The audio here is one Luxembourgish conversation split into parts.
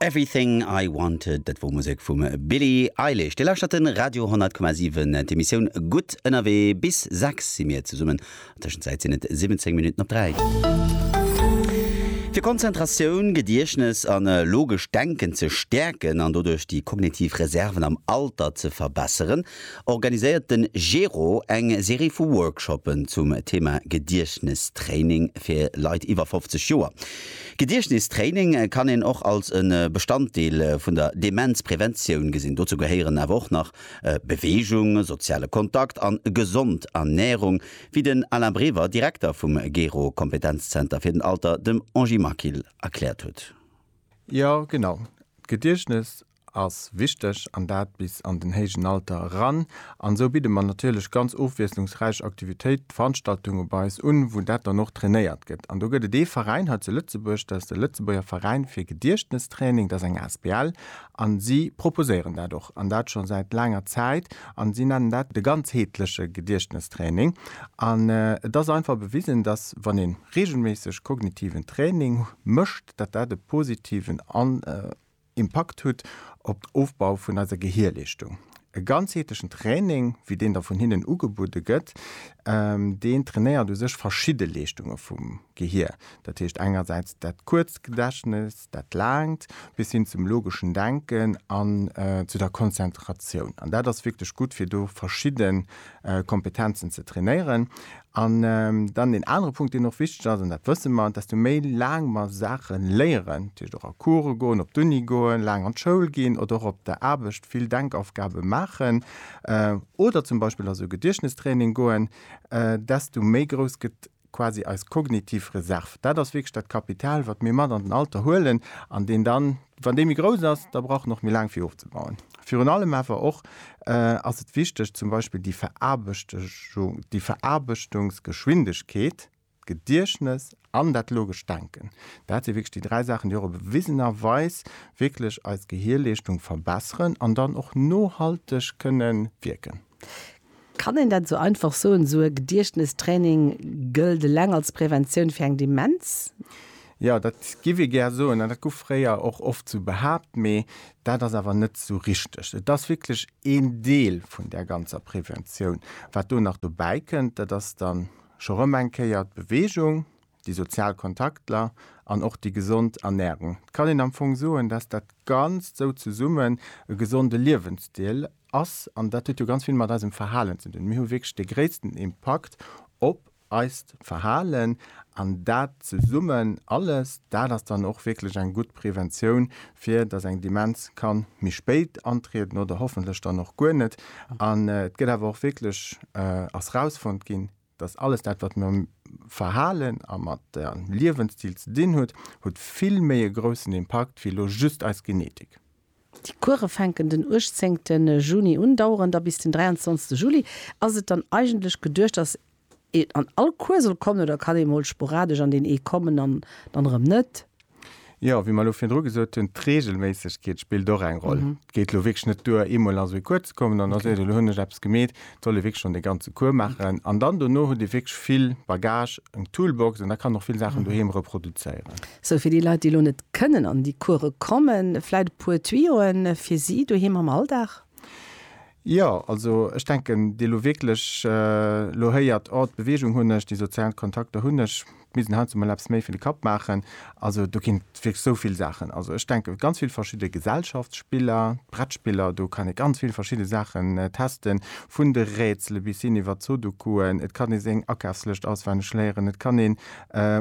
Everything I Wanted, dat wor Musek vum Billie Eilish. Dir lauschtert den Radio 100,7, d'Emissioun Gutt ënnerwee. Bis 6 si mir zesummen, an Tëschenzäit sinn et 17 Minutten op 3. Fir Konzentratioun, Gediechtnes an logescht Denken ze stäerken an doduerch déi kognitiv Reserven am Alter ze verbesseren, organiséiert de Gero eng Serie vu Workshoppen zum Thema Gediechtnestraining fir Leit iwwer 50 Joer. Gediechtnestraining kann een och als e Bestanddeel vun der Demenzpreventioun gesinn. Dozou gehéieren awer och nach Beweegung, soziale Kontakt a gesond Ernärung, wéi den Alain Brever, Direkter vum Gero Kompetenzzenter fir den Alter, dem Angie Maquil erkläert huet. Jo genau, d'Gediechtnes ass wichteg an dat bis an den héijen Alter eran. An esou bidde mer natierlech ganz ofwiesslungsräich Aktivitéit, Veranstaltunge bei eis un, wou dat dann och trainéiert gëtt. An do gëtt et ee Veräin hei zu Lëtzebuerg, dat ass de Lëtzebuerger Veräin fir Gediechtnestraining, dat ass eng asbl, a si proposéieren dat och, an dat scho säit laanger Zäit, a si nennen dat de ganzheetleche Gediechtnestraining. An et ass einfach bewisen, dass wann ee reegelméisseg kognitiven Training mécht, dat dat e positiven Impakt hutt op den Ofbau vun eiser Gehierleeschtung. E ganzheetlechen Training, wéi deen da vun hinnen ugebudde gëtt, deen trainéiert u sech verschidde Leeschtunge vum Gehier. Dat heescht engersäits dat kuerzt Gedächtnes, dat laangt, bis hin zum logeschen Denken an zu der Konzentratioun. An dat ass wierklech gutt, fir do verschidde Kompetenzen ze trainéieren. An dann deen anere Punkt, deen och wichteg ass, an dat wësse mer, desto méi laang mer Saache léieren, dat heescht och a Course goen, op d'Uni goen, laang an d'Schoul ginn oder och op der Aarbecht vill Denkaufgabe maachen oder zum Beispill a sou Gediechtnestraining goen, desto méi grouss gëtt quasi eis kognitiv Reserv. Dat ass wierklech dat Kapital, wat mir mat an den Alter huelen an deen dann, Wann déi méi grouss ass, da brauch en och méi laang fir ofzebauen. Virun allem awer och ass et wichteg, zum Beispill déi Veraarbechtechung, déi Veraarbechtungsgeschwindegkeet, d'Gediechtnes an dat logescht Denken, dat si wierklech déi dräi Saachen, déi och op bewisenerweis wierklech eis Gehirleeschtung verbesseren an dann och nohalteg kënnen wierken. Kann een dat esou einfach soen, esou e Gediechtnestraining gëllt eleng als Preventioun fir eng Demenz? Jo, dat giff ee gär soen an dat guff fréier och oft esou behaapt, mee dat ass awer net esou richteg. Et ass wierklech een Deel vun där ganzer Preventioun. Wat do nach dobäi kënnt, dat ass dann scho rëm eng Kéier d'Beweegung. déi sozial Kontaktler an och déi gesond Ernährung. Et kann een am Fong soen, dass dat Ganzt sou zesummen e gesonde Liewensstil ass. An dat huet jo ganz vill mat eisem Verhalen ze dinn. Mir hu wierklech de gréissten Impakt op eist Verhalen. An dat zesummen alles, dat ass dann och wierklech eng gutt Preventioun, fir dass eng Demenz kann méi spéit antrieden oder hoffentlech dann och guer net. An et gëtt awer och wierklech, ass rausfonnt ginn, Dass alles dat, wat mam Verhalen a mat der Liewensstil ze dinn huet, huet vill méi e groussen Impakt wéi elo just eis Genetik. Déi Course fänken den 18 Juni un, daueren da bis den 23 Juli. Ass et dann eigentlech geduecht, dass een an all Cours soll kommen oder kann ee mol sporadesch an deen ee kommen an dann erëm net? Jo, wéi mer elo virdru gesot hunn, d'Reegelméissegkeet spillt och eng Roll. Et geet elo wierklech net duer, eemol ass ee kuerz zekommen, dann ass et, elo hunn ech eppes gemeet. Et soll ee wierklech schonn de ganze Cours maachen. An dann dono huet ee wierklech vill Bagage, eng Toolbox an da kann och vill Saachen doheem reproduzéieren. Sou, fir déi Leit, déi elo net kënnen an déi Course kommen, vläit e puer Tuyauxen fir si doheem am Alldag? Jo, also ech denken, déi elo wierklech elo héiert, oh d'Beweegung hunn ech, déi sozial Kontakter hunn ech, d'Middel haut se mol eppes méi fir de Kapp maachen. Also do ginn et wierklech esou vill Saachen. Also ech denke ganz vill verschidde Gesellschaftsspiller, d'Brettspiller, do kann ee ganz vill verschidde Saachen testen, vun de Rätsele bis hin iwwert d'Sudokuen. Et kann ee seng Akafslëscht auswenneg léieren, et kann een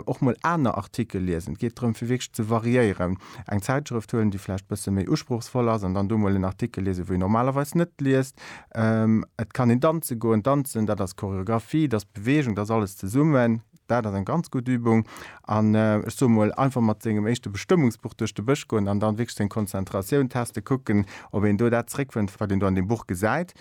och mol aner Artikel liesen. Et geet drëm fir wierklech ze variéieren. eng Zäitschrëft huelen, déi vläicht e bësse méi usprochsvoll ass, an dann do mol en Artikel liesen, wou een normalerweis net liest. Et kann een danze goen. Danzen, dat ass Choreographie, dat ass Beweegung, dat ass alles zesummen. Dat ass eng ganz gutt Übung. An ech soe mol, einfach mat sengem éischte Bestëmmungsbuch duerch de Bësch goen an dann wierklech seng Konzentratioun testen, kucken, ob een do dat zeréckfënnt, wat een do an deem Buch gesäit.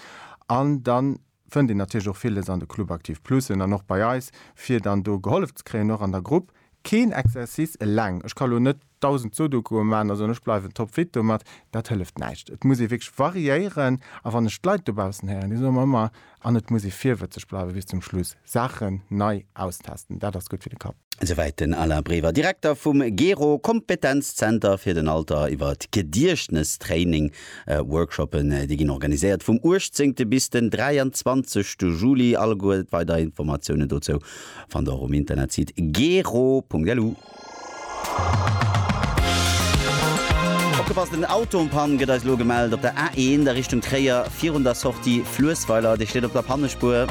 An dann fënnt een natierlech och villes an de Club Aktiv Plusen an och bei eis, fir dann do gehollef ze kréien, och an der Grupp. Keen Exercice eleng, ech ka lo net 1000 Sudokue maachen a soen, ech bleiwen topfit domat, dat hëlleft näischt. Et muss ee wierklech variéieren a wann ech d'Leit dobaussen héieren, déi soe mer ëmmer, an et muss ee virwëtzeg bleiwen bis zum Schluss, Saachen nei austesten, dat ass gutt fir de Kapp. Souwäit den Alain Brever, Direkter vum GERO, Kompetenzzenter fir den Alter, iwwer Gediechtnestraining, Workshoppen, déi ginn organiséiert vum 18 bis den 23 Juli. Alleguer weider Informatiounen dozou fannt der och um Internetsite gero.lu. Opgepasst, en Auto en panne gëtt eis elo gemellt op der A1 a Richtung Tréier, virun der Sortie Fluessweiler. Dee steet op der Pannespuer.